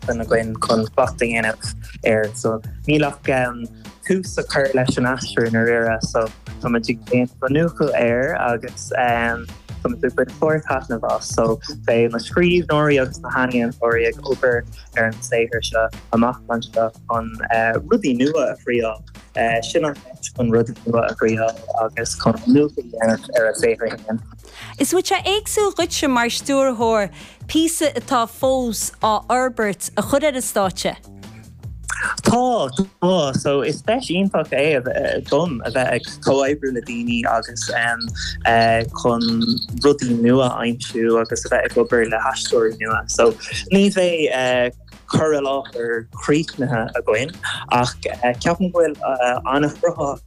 san againn chun slacht a dhéanamh air. So níl ann ach tús a chur leis an aistriú i ndáiríre. So tá muid ag déanamh an nuachúil air agus tá muid ag baint fíorthaitneamh as. So beidh na scríbhneoirí agus na healaíontóirí ag obair ar an saothar seo amach anseo chun rudaí nua a thriail. Sin an áit chun rudaí nua a thriail agus chun nuachúil a dhéanamh ar a saothar féin. Is ait é éagsúil dhuitse mar stiúrthóir píosa atá fós á fhorbairt a chur ar an stáitse. Tá, tá. So is deis iontach é dom a bheith ag comhoibriú le daoine agus chun rudaí nua a aimsiú agus a bheith ag obair le haisteoirí nua. So ní bheidh cur i láthair críochnaithe againn ach ceapaim go bhfuil an-chruthaitheacht.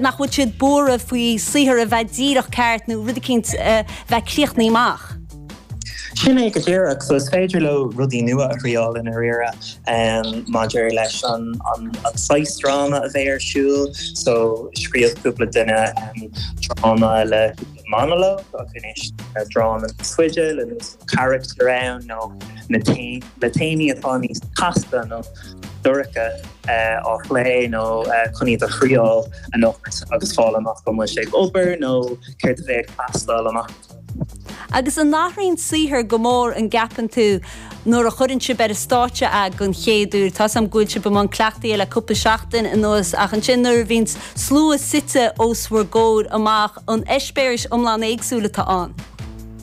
Nach bhfuil siad buartha faoi saothar a bheith díreach ceart nó rud eicínt a bheith críochnaithe amach. Sin é go díreach, so is féidir leo rudaí nua a thriáil i ndáiríre maidir leis an saghas dráma a bheidh ar siúl, so scríobh cúpla duine dráma le monalóg agus dráma fada le carachtar ann nó na taobh. le téamaí atá níos casta nó dorcha á phlé nó chun iad a thriáil anocht agus fáil amach an bhfuil sé ag obair nó céard a bheidh ag teastáil amach. Agus an athraíonn saothar go mór an gceapann tú nuair a chuireann sibh ar an stáitse é den chéad uair? Tá's agam go bhfuil sibh i mbun cleachtaí le cúpla seachtain anuas ach ansin nuair a bhíonn slua suite os bhur gcomhair amach an eispéiris iomlán éagsúil atá ann.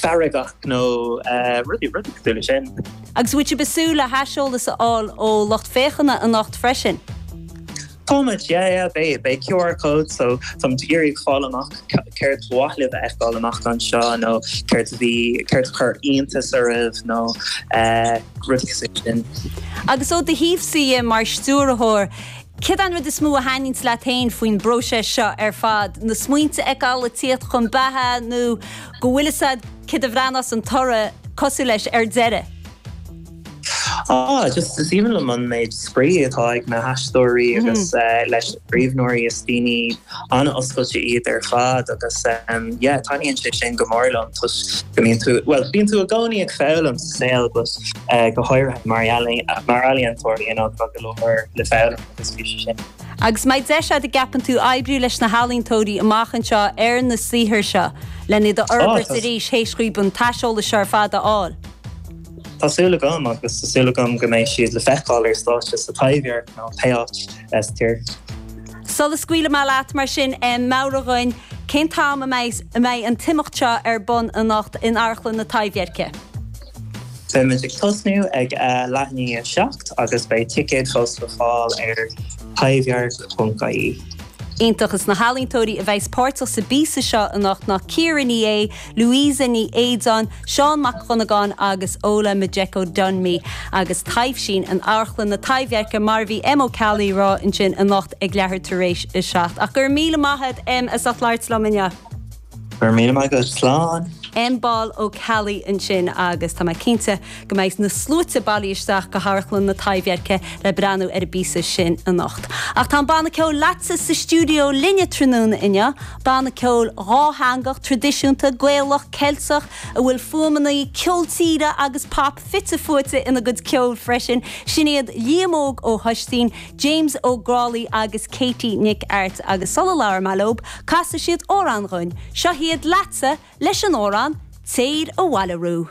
farraigheacht nó rudaí cosúil leis sin. Agus an mbeidh sibh ag súil le haiseolas a fháil ó lucht féachana anocht freisin? Táimid, yeah, yeah, beidh, beidh QR codes, so táimid ag iarraidh a fháil amach céard ba mhaith libh a fheiceáil amach anseo nó céard a bhí, céard a chuir iontas oraibh nó rudaí cosúil leis sin. Agus ó do thaobhsa dhe mar stiúrthóir, Céard é an rud is mó a thaitníonns leat féin faoin bpróiseas seo ar fad? Na smaointe a fheiceáil ag tíocht chun beatha nó go bhfuil fhios agat céard a bhreathnós an toradh cosúil leis ar deireadh? Ah, just is aoibhinn liom an méid spraoi atá ag na haisteoirí agus leis na scríbhneoirí. Is daoine an-oscailte iad ar fad agus yeah taitníonn sé sin go mór liom toisc go mbíonn tú, bhuel bíonn tú i gcónaí ag foghlaim sa saol but go háirithe mar ealaín- mar ealaíontóir you know tá go leor le foghlaim agus bhí sé sin. Agus an mbeidh deis a'd an gceapann tú oibriú leis na healaíontóirí amach anseo ar na saothair seo len iad a fhorbairt arís théis dhaoibh an t-aiseolas seo ar fad a fháil. Tá súil agam agus tá súil agam go mbeidh siad le feiceáil ar stáitse sa Taibhdhearc nó pé áit sa tír. Sula scaoilfidh mé leat mar sin, meabhraigh dhuinn cén t-am a mbeidh an t-imeacht seo ar bun anocht in Amharclann na Taibhdheirce. Beimid ag tosnú ag a leath i ndiaidh a seacht agus beidh ticéid fós le fáil ar taibhdhearc.ie. Iontach. Is na healaíontóirí a bheidhs páirteach sa bpíosa seo anocht ná Ciara Ní É, Louisa Ní Éideáin, Seán Mac Dhonnagáin agus Ola Majekodunmi agus taibhsíonn in Amharclann na Taibhdheirce mar a bhí Em Ó Ceallaigh ag rá ansin anocht ag leathuair tar éis a seacht. Ach go raibh míle maith agat Em as ucht labhairt liom inniu. Go raibh míle maith agat. Slán. Em Ball Ó Ceallaigh ansin agus tá mé cinnte go mbeidh na sluaite bailithe isteach go hAmharclann na Taibhdheirce le breathnú ar an bpíosa sin anocht. Ach tá an banna ceoil Leatsa sa stiúideo linne tráthnóna inniu Banna ceoil dhátheangach, traidisiúnta, Gaelach, Ceilteach a bhfuil fuaimeanna ceol tíre agus pop fite fuaite ina gcuid ceoil freisin, sin iad Liam Óg Ó hOistín, James Ó Grálaigh agus Katie Nic Airt agus sula labhróidh mé leo, casfaidh siad amhrán dhúinn. Seo hiad Leatsa leis an amhrán 'Téir Abhaile Riú'